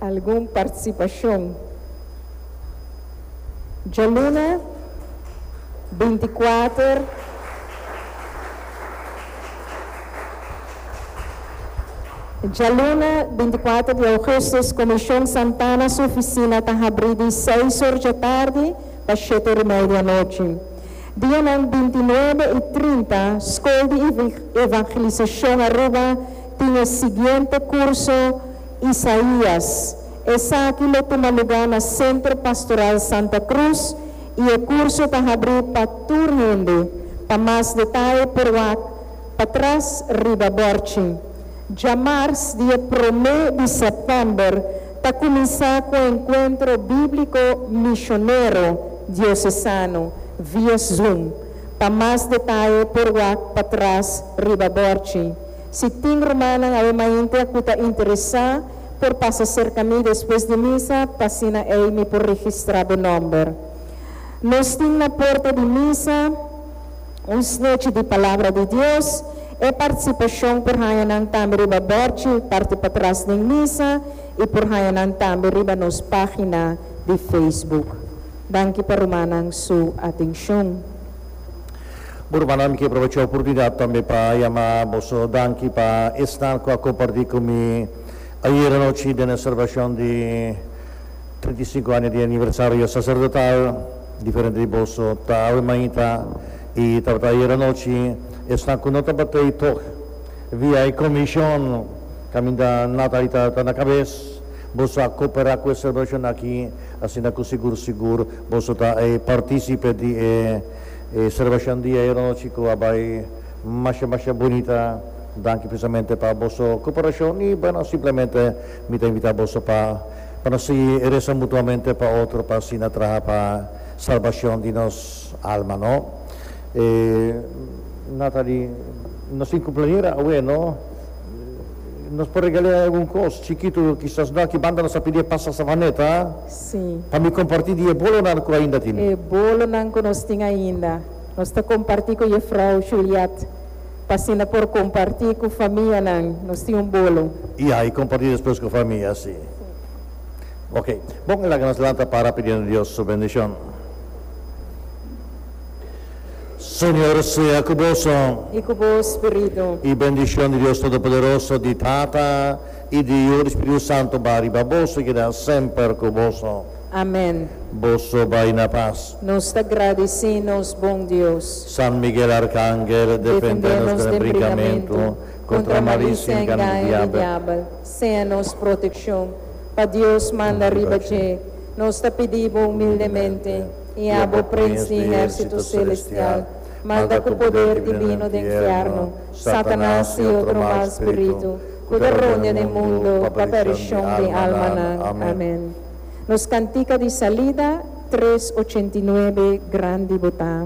Algun participacion? Djaluna binti kuater Djaluna binti kuater di Augustus Comision Santana su oficina ta habri di seis or djatardi pa shete or y media anochi. Dianan binti nuebe y trinta Scol di Evangelisacion Aruba Tin e siguiente kurso, Isaías. Esaki lo tuma lugá na Sentro Pastoral Santa Cruz i e kurso ta habrí pa tur hende. Pa mas detaye por wak patras riba bòrchi. Djamars di e promé di sèptèmber ta kuminsá ku Enkuentro Bíbliko Mishonero Diosesano via Zoom. Pa mas detaye por wak patras riba bòrchi. Si tin rumannan awe maintea ku ta interesá, por pasa serka mi despues di misa pa asina ei mi por registrá bo nòmber. Nos tin na porta di misa un snechi di Palabra di Dios. E partisipashon por haña nan tambe riba bòrchi parti patras den misa i por haña nan tambe riba nos página di Facebook. Danki pa rumannan su atenshon. Bo rumannan, mi ke probecha e oportunidat tambe pa yama boso danki pa esnan ku a kompartí ku mi ayera anochi den e selebrashon di trinta i sinku aña di aniversario saserdotal. Diferente di boso ta awe mainta i tabata ayera anochi. Esnan ku no tabata ei tòg via e komishon kaminda Natalie ta na kabes, boso a kooperá ku e selebrashon aki. Asina cu sigur sigur boso ta e participe di e e celebracion di ayeronochi cu a bay masha masha bunita. Danki precisamente pa boso cooperacion y bueno simplemente mi ta invita boso pa pa nos sigui reza mutuamente pa otro pa asina traha pa salbacion di nos alma no. E Nathalie nos tin cumpleañera awe no. Nos por regale'é algun kos chikitu, kisas no aki banda nos a pidi e pasta savaneta, Sí. pa mi kompartí di e bolonan ku ainda tin. E bolonan ku nos tin ainda, nos ta kompartí ku Jefrou Juliette, pa asina por kompartí ku famianan, nos tin un bolo. Ya, i kompartí despues ku famia, sí. Oke, bon, laga nos lanta para pidiendo Dios su bendishon. Señor sea cu boso. I cu bo spiritu. I bendicion di Dios Todopoderoso, di Tata i di Yiu, di Spiritu Santo bai riba boso i keda semper cu boso. Amen. Boso bai na pas. Nos ta gradici nos bon Dios. San Miguel Arcangel, defende nos den brincamentu contra malicia i engaño di diabel. Sea nos proteccion. Pa Dios manda riba dje. Nos ta pidi bo humildemente. i a bo prins di ehérsito selestial, manda ku poder divino den fièrnu, Satanas i otro mal spiritu ku ta roña den mundu pa perishon di alma nan. Amén. Nos kantika di salida, tres ochenta i nuebe, Grandi bo ta.